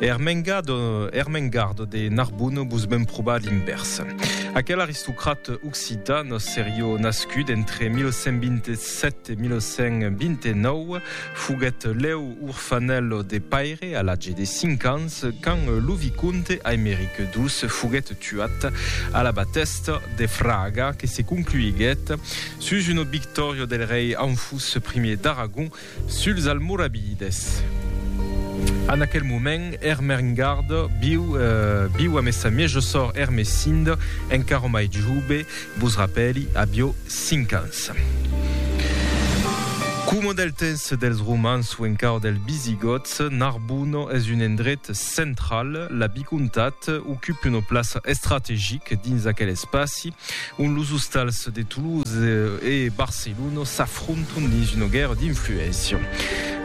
Ermengardo, Ermengardo de Narbonne vos ben proba l'invèrs. Aquel aristocrat occitan serió nascut entre 1127 e 1129 foguèt lèu orfanèl de paire a l'atge de 5 ans quand lo vicomte Aimeric ii foguèt tuat a la batèsta de Fraga que se concluiguèt sus una victòria del rei Anfús I d'Aragon Suls Almoravides. En aquel moment, Ermengard viu viu amé sa miejo sòr Ermesinde, encara mai jove, vos rapèli, avió 5 ans. Coma del temps dels Romans o encara dels Visigòts, Narbona es un endret central, la vicomtat ocupe una plaça estrategic dins aquel espaci. ont los ostals de Toulouse e Barcelona s'afrontan dins una guèrra d'influéncia.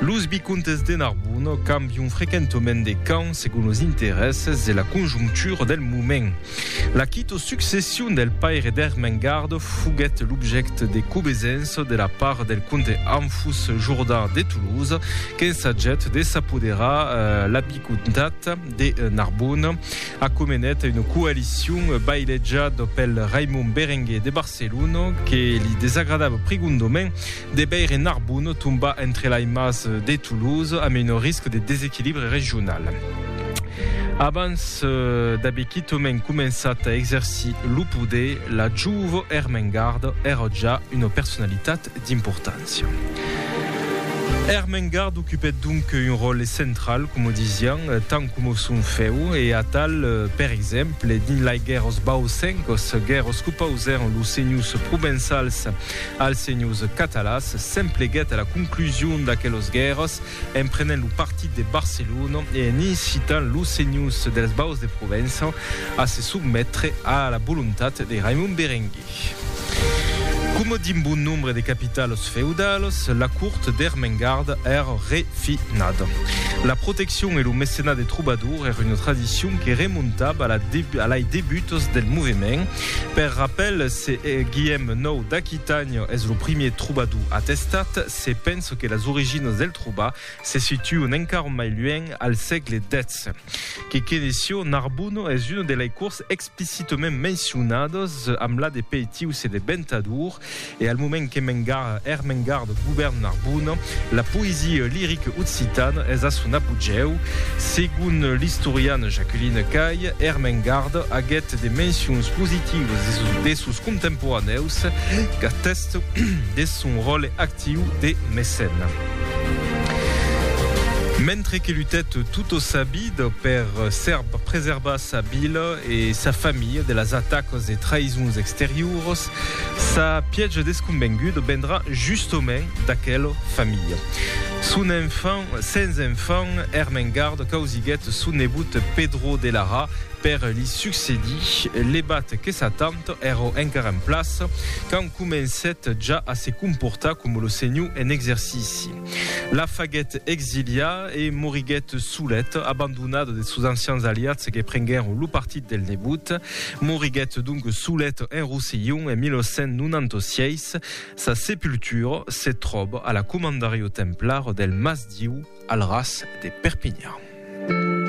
Los vicomtes de Narbona cambian frequentament de camp segon los interèsses e la conjonctura del moment. La quita succession del paire d'Ermengard foguèt l'objècte de cobesença de la part del comte Anfus Jourdan de Toulouse, qu'ensagèt de s'apoderar la comtat de Narbona acomenèt una coalicion bailejada pel Raimon Berenguer de Barcelona que li desagradava prigondament de veire Narbona tombar entre lai mas de Toulouse amb una risca de desequilibre regional. Abans d'aver quitament començat a exercir lo poder, la jove Ermengarda èra ja una personalitat d'importància. Ermengarde ocupèt donc un ròtle central, coma disián, tant coma son fèu, e atal, per exemple, dins lai guèrras bausencas, guèrras qu'opausèron los senhors provençals als senhors catalans, s'empleguèt a la conclusion d'aquelas guèrras en prenent lo partit de Barcelona e en incitant los senhors dels Baus de Provença a se sotmetre a la volontat de Raimon Berenguer. Tic. Coma d'un bon nombre de capitalos feudalos, la cort d'Ermengarda èra re finada. La proteccion e lo mecenat de trobadors èra una tradicion que remontava a lai debutos del movement. Per rapèl, se Guièm nou d'Aquitània es lo primièr trobador atestat, se pensa que las originas del trobar se situan encara mai luènh al sègle xvi. Que Kenesio Narbuno es un de lei cours explicitament mencionados amb la de peitius e de bentador, e al moment que m'engarra er m'engardo govern Narbona, la poesia lirica occitana es a son apogèu. Segon l'istoriana Jacqueline Cay, er m'engarda aguèt de mencions positivas de sos contemporanèus qu'atèsten deth son ròle actiu Tiu de Mecène. Mentre que lutèt tota sa vida per preservar sa vila e sa familha de las atacas e traïsons exterioras, sa pièja desconvenguda vendrà justament d'aquela familha. Son enfant, sens enfant, Ermengarde causiguèt son nebot Pedro de Lara per li succedir, levat que Satan, Èrò encara en plaça quand comencèt ja a se comportar coma lo senhor en exercici. La faguèt exiliar e moriguèt solet, abandonat de sos ancians aliats que prenguèron lo partit del nebot. Moriguèt donc solet en Rossillon en 1196. Sa sepultura se tròba a la Comandariu Templar del Mas Diu al ras de Perpinhan.